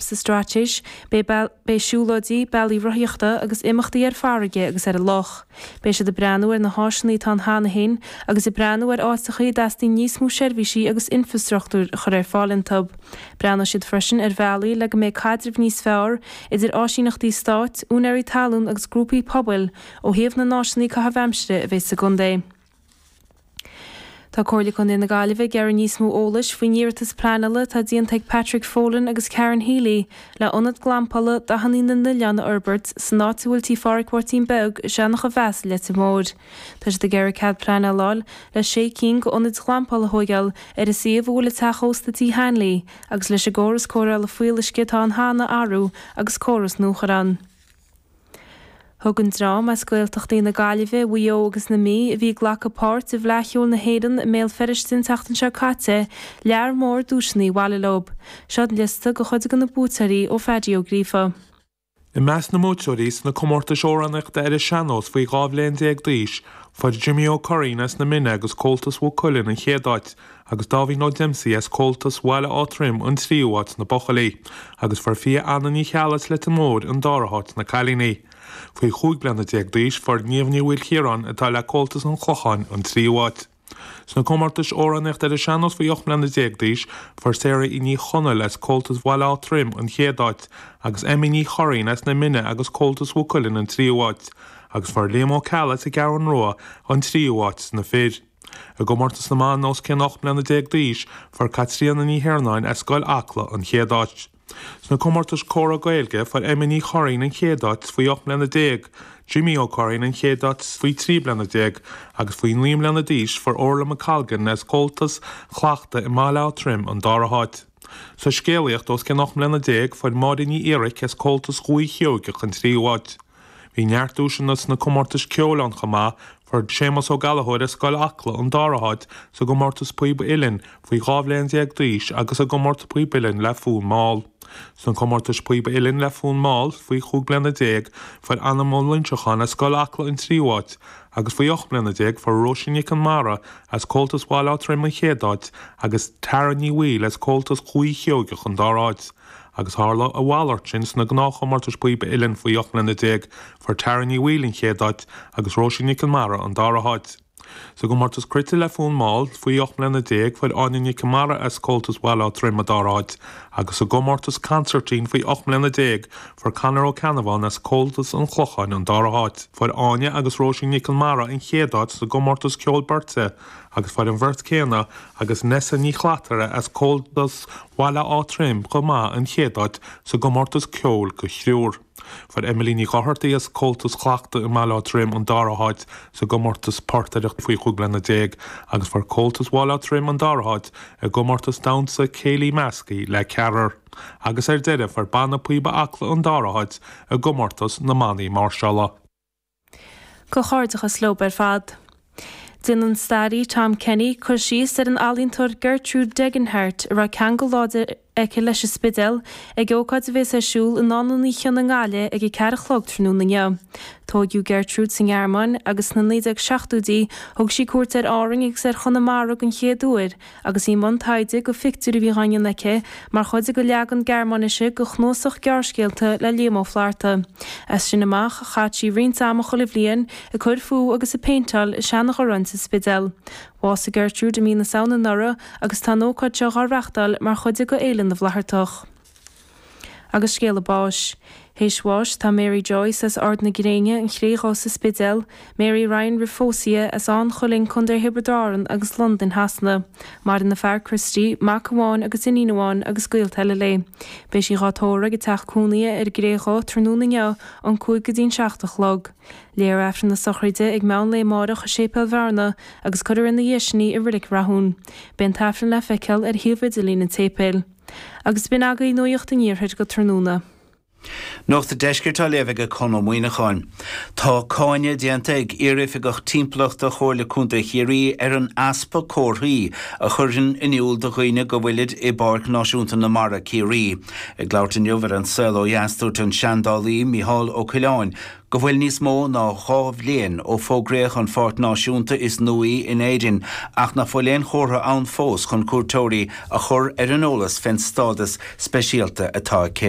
Sa Straitéis beidh siúlóidí, bealaí rothaíochta agus imeachtaí ar farraige agus ar an loch. Beidh siad ag breathnú ar na háiseanna atá ann cheana féin agus ag breathnú ar áiteacha a dteastaíonn níos mó seirbhísí agus infreastruchtúir a chur ar fáil iontu. Breathnóidh siad freisin ar bhealaí le go mbeidh caidreamh níos fearr idir áisíneachtaí stáit, úinéirí talún agus grúpaí pobail ó thaobh na n-áiseanna caitheamh aimsire a bheidh sa gcontae. Tá Comhairle Contae na Gaillimhe ag iarraidh níos mó eolais faoin iarratas pleanála atá déanta ag Patrick Folan agus Karen Healy le ionad glampála Dathannaí na nOileán a fhorbairt san áit a bhfuil Tí Pháraic Mháirtín Beag i Seanachamheas i Leitir Móir. Tá siad ag iarraidh cead pleanála a fháil le sé cinn de ionaid ghlampála a thóigeáil ar an suíomh a bhfuil an teach ósta Tí Hanley agus leis an gcóras cóireála fuíolluisce atá ann cheana a athrú agus córas nua a chur ann. Thug an dream as Gaeltachtaí na Gaillimhe, Mhaigh Eo agus na Mí a bhí ag glacadh páirt i bhFleadh Cheoil na hÉireann i mBéal Feirste an tseachtain seo caite lear mór duaiseanna abhaile leo. Seo liosta de chuid de na buaiteoirí ó Pheaidí Ó Gríofa. I measc na mbuaiteoirí sna comórtais amhránaíochta ar an sean-nós faoi dhá bhliain déag d'aois, fuair Jimí Ó Curraoin as na Mine agus Comhaltas Mhaigh Cuilinn an chéad áit agus Dáibhín Ó Dempsey as Comhaltas Bhaile Átha Troim an tríú áit sna buachaillí, agus fuair Fia Anna Ní Cheallaigh as Leitir Móir an dara háit sna cailíní. Faoi chúig bliana déag d'aois fuair Niamh Ní Mhaoilchiaráin atá le Comhaltas an Chlocháin an tríú áit. Sna comórtais amhránaíochta ar an sean-nós faoi ocht mbliana déag d'aois fuair Saraí Ní Chonaill as Comhaltas Bhaile Átha Troim an chéad áit, agus Emmy Ní Churraoin as Na Mine agus Comhaltas Mhaigh Cuilinn an tríú áit, agus fuair Liam Ó Ceallaigh as an gCeathrú Rua an tríú áit sna fir. I gcomórtas na mban os cionn 18 mbliana d'aois, fuair Caitríona Ní hIarnáin as Scoil Acla an chéad áit. Sna comórtais Comhrá Gaeilge, fuair Emma Ní Churraoin an chéad áit faoi 18 mbliana, Jimí Ó Curraoin an chéad áit faoi 13 bliana agus faoi 9 mbliana d'aois fuair Órla McColgan as Comhaltas Thlachta i mBaile Átha Troim an dara háit. Sa scéalaíocht os cionn 18 mbliana, fuair Máire Ní Fhíoraic as Comhaltas Dhúiche Sheoigeach an tríú háit. Bhí neart duaiseanna sna comórtais ceoil ann chomh maith, fuair Séamus Ó Gallachóir as Scoil Acla an dara háit sa gcomórtas Píob Uilleann faoi dhá bhliain déag d'aois agus sa gcomórtas Píob Uilleann le fonn mall. Sna comórtais Píob Uilleann le fonn mall faoi chúig bliana déag fuair Anam Ó Loinseacháin as Scoil Acla an tríú háit agus faoi ocht mbliana déag fuair Róisín Nic Conmara as Comhaltas Bhaile Átha Troim an chéad áit agus Tara Ní Bhaoill as Comhaltas Dhúiche Sheoigeach an dara háit agus tharla a mhalairt sin sna gnáthchomórtais Píob Uilleann faoi 18 mbliana, fuair Tara Ní Bhaoill an chéad áit agus Róisín Nic Conmara an dara háit. Sa gcomórtas cruite le fonn mall faoi 18 mbliana, fuair Áine Nic Conmara as Comhaltas Bhaile Átha Troim an dara háit agus sa gcomórtas consairtín faoi 18 mbliana, fuair Conor Ó Ceannabháin as Comhaltas an Chlocháin an dara háit. Fuair Áine agus Róisín Nic Conmara an chéad áit sa gcomórtas ceoil beirte, agus fuair an bheirt céanna agus Neasa Ní Shlatara as Comhaltas Bhaile Átha Troim chomh maith an chéad áit sa gcomórtas ceoil go thriúr. Fuair Emily Ní Dhochartaigh as Comhaltas Thlachta i mBaile Átha Troim an dara háit sa gcomórtas Portaireacht faoi chúig bliana déag agus fuair Comhaltas Bhaile Átha Troim an dara háit i gcomórtas Damhsa Céilí Measctha le ceathrar. Agus ar deireadh fuair Banna Píoba Acla an dara háit i gcomórtas na mbannaí máirseála. Comhghairdeachas leob ar fad. Déanfaidh an staraí Tom Kenny cur síos ar an ealaíontóir Gertrude Degenhardt a raibh ceangal láidir aici leis an Spidéal ag ócáid a bhéas ar siúl i nDánlann Uí Chionnaith i nGaillimh ag a ceathair a chlog tráthnóna inniu. Tóigeadh Gertrude sa nGearmáin agus sna 1970idí thug sí cuairt ar Árainn agus ar Chonamara den chéad uair agus í i mbun taighde go phictiúir a bhí dhá ndéanamh aici mar chuid de leagan Gearmáinise de chnuasach gearrscéalta le Liam Ó Flaithearta. As sin amach chaith sí roinnt ama chuile bhliain ag cur fúithi agus ag péinteáil i Seanadh Gharráin sa Spidéal. Bhásaigh Gertrude i mí na Samhna anuraidh agus tá an ócáid seo dhá reachtáil mar chuid de Fhéile na bhFlaitheartach. Agus scéala báis. Théis bháis tá Mary Joyce as Ard na Gréine, An Chré Dhubh sa Spidéal, Mary Ryan roimh phósadh dhi as Áth an Chuilinn, Co. Thiobraid Árann agus Londain Shasana. Maireann a fear, Christy, mac amháin agus iníon amháin agus gaolta eile léi. Beidh sí dhá tórramh ag a teach cónaithe ar an gCré Dhubh tráthnóna inniu ón cúig go dtí'n seacht a chlog. Léifear Aifreann na sochraide ag meán lae amáireach i Séipéal Bhearna agus cuirfear ina dhiaidh sin í i Reilig Rathúin. Beidh an tAifreann le feiceáil ar shuíomh idirlín an tséipéil. Agus b'in agaibh Nuaíocht an Iarthair go tráthnóna. Nuacht an Deiscirt á léamh ag Conn Ó Muíneacháin. Tá cáineadh déanta ag iar-oifigeach timpeallachta Chomhairle Contae Chiarraí ar an easpa comharthaí a chuireann in iúl do dhaoine go bhfuilid i bPáirc Náisiúnta na Mara, Ciarraí. Ag labhairt inniu ar An Saol Ó Dheas dúirt an seandálaí Micheál Ó Coileáin, go bhfuil níos mó ná dhá bhliain ó fógraíodh an pháirc náisiúnta is nuaí in Éirinn ach ná fuil aon chomhartha ann fós chun cuairteoirí a chur ar an eolas fén stádas speisialta atá aici.